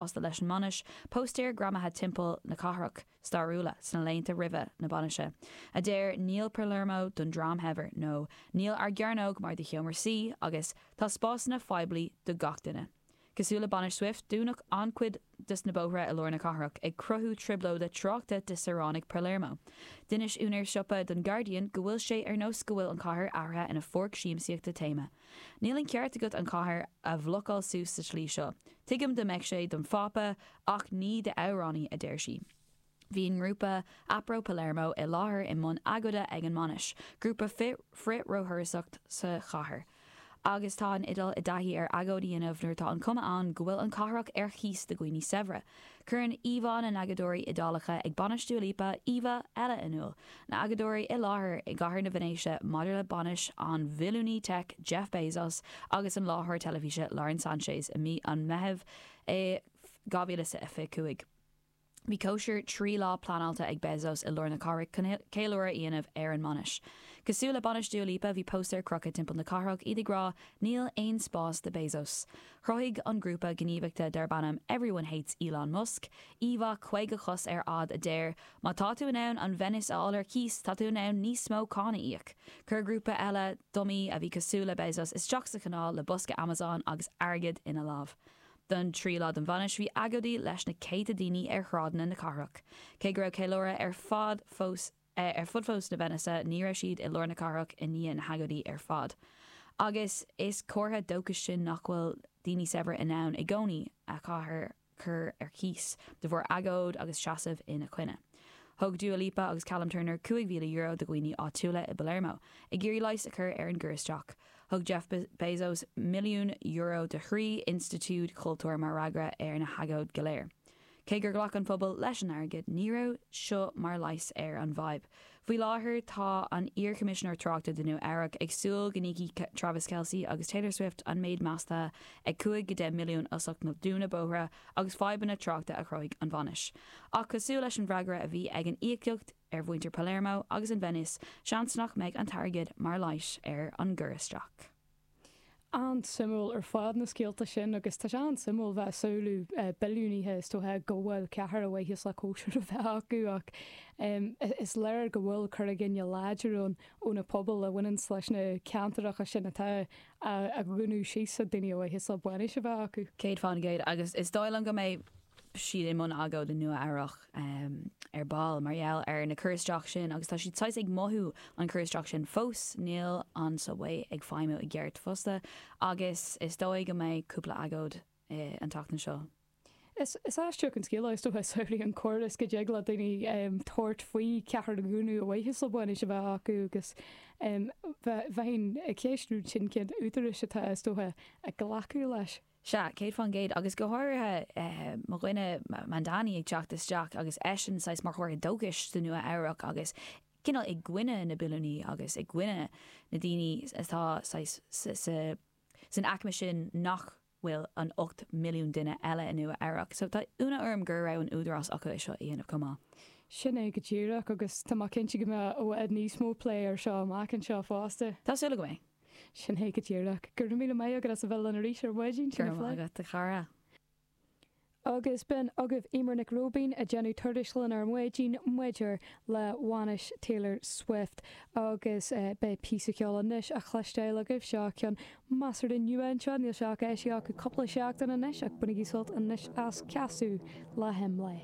fosta leis an mbainis, póstaeir greamaithe timpeall na cathrach stairiúla sna laethanta roimhe na bainise a deir 'Níl Palermo don dream shaibhir' nó 'Níl ár gcearnóg mar do sheomra suí' agus 'Tá spásanna poiblí do gach duine'. Cosúil le bainis Swift, dúnadh an-chuid dos na bóithre i lár na cathrach, ag cruthú trioblóide tráchta do shaoránaigh Palermo. D'inis úinéir siopa don Guardian go bhfuil sé ar nós go bhfuil an chathair athraithe ina pháirc siamsaíochta téama, Níl an ceart agat an chathair a bhlocáil suas sa tslí seo. Tuigim dá mbeadh sé don Phápa ach ní d'amhránaí, a deir sí. Bhí an grúpa Apro Palermo i láthair i mbun agóide ag an mbainis, grúpa frith-róthurasóireachta sa chathair. Agus tá an Iodáil i dtaithí ar agóid a dhéanamh nuair atá an cuma ann go bhfuil an cathrach ar chíos do dhaoine saibhre. Cuireann íomhá na n-agóideoirí Iodálacha ag bainis Dua Lipa íomha eile in iúl, na hagóideoirí i láthair i gCathair na Veinéise maidir le bainis an bhilliúnaí teic Jeff Bezos agus an láithreoir teilifíse Lauren Sanchez i mí an Mheithimh 2025. Bhí cóisir trí lá pleanáilte ag Bezos i lár na cathrach chun ceiliúradh a dhéanamh ar an mbainis. Cosúil le bainis Dua Lipa, bhí póstaeir crochtha timpeall na cathrach, iad ag rá 'Níl aon spás do Bezos'. Chruthaigh an grúpa gníomhachta darb ainm Everyone Hates Elon Musk íomhá 50 cos ar fhad a deir, Má tá tú in ann an Veinéis a fháil ar cíos, tá tú in ann níos mó cáin a íoc. Chuir grúpa eile dumaí, a bhí cosúil le Bezos, isteach sa chanáil le bosca Amazon agus airgead ina lámh. Don tríú lá den bhainis, bhí agóidí leis na céadta daoine ar shráideanna na cathrach, cé go raibh ceiliúradh ar fad fós na ar fud fós na Veinéise, ní raibh siad i lár na cathrach i ndiaidh na hagóidí ar fad. Agus is comhartha dóchais é sin nach bhfuil daoine saibhre in ann i gcónaí an chathair a chur ar cíos de bharr agóid agus seasamh ina choinne. Thug Dua Lipa agus Callum Turner €5,000 do dhaoine áitiúla i bPalermo ag iarraidh leigheas a chur ar an gcur isteach, thug Jeff Bezos milliún euro do thrí institiúid chultúir mar fhreagra ar na hagóid go léir. Cé gur ghlac an pobal leis an airgead, ní raibh seo mar leigheas ar an bhfadhb. Faoi láthair, tá an iar-Choimisinéir Tráchta do Nua Eabhrac ag súil go n-íocfaidh Travis Kelce agus Taylor Swift an méid measta ag 5 go 10 milliún as ucht na dúntaí bóithre agus fadhbanna tráchta a chruthaigh an bhainis. Ach cosúil leis an bhfreagra a bhí ag an íocaíocht ar mhuintir Palermo agus an Veinéis, seans nach mbeidh an t-airgead mar leigheas ar an gcur isteach. An-suimiúil ar fad na scéalta sin agus tá sé an-suimiúil bheith ag samhlú billiúnaithe is dócha ag glacadh cathair ar mhaithe le cóisir a bheith acu ach is léir go bhfuil cur i gcoinne láidir ann ó na pobail a bhaineanns leis na ceantaracha sin atá á dhúnadh síos ag daoine ar mhaithe le bainis a bheith acu. Céad faoin gcéad agus is dóigh liom go mbeidh. siad i mbun agóid i Nua Eabhrac ar ball mar gheall ar na cur isteach sin agus tá siad saghas ag mothú an cur isteach sin fós, níl an subway ag feidhmiú i gceart fosta agus is dóigh go mbeidh cúpla agóid an tseachtain seo. Is aisteach an scéal é is dócha, samhlaigh an córas go dtig le daoine tabhairt faoi cheadúnas le haghaidh bainis a bheith acu agus bheinn ag ceistiú cén t-údarás atá, is dócha, ag glacadh leis. Sea, céad faoin gcéad, agus go háirithe mo dhuine Mamdani ag teacht isteach agus eisean saghas mar chomhartha dóchais sa Nua Eabhrac agus cineál i gcoinne na billiúnaí agus i gcoinne na ndaoine atá saghas san aicme sin nach bhfuil an 8 milliún duine eile i Nua Eabhrac. So tá ionadh orm go raibh an t-údarás acu é seo a dhéanamh chomh maith. Sin é go díreach, agus tá mé cinnte go mbeidh i bhfad níos mó plé air seo amach anseo fosta. Tá súil agam go mbeidh. Sin é go díreach. Go raibh míle maith agat as a bheith linn arís ar Mhaidin Go sinn ar raibh maith Fleadh. agat, a chara. Agus b'in agaibh Eimear Nic Róibín ag déanamh cur síos linn ar Mhaidin maidir le bainis Taylor Swift. Agus beidh píosa ceoil anois á chloisteáil agaibh, seo ceann measartha nua anseo, níl sé ach eisithe acu cúpla seachtain anois, ach bainigí sult anois as, Casadh le hImlé.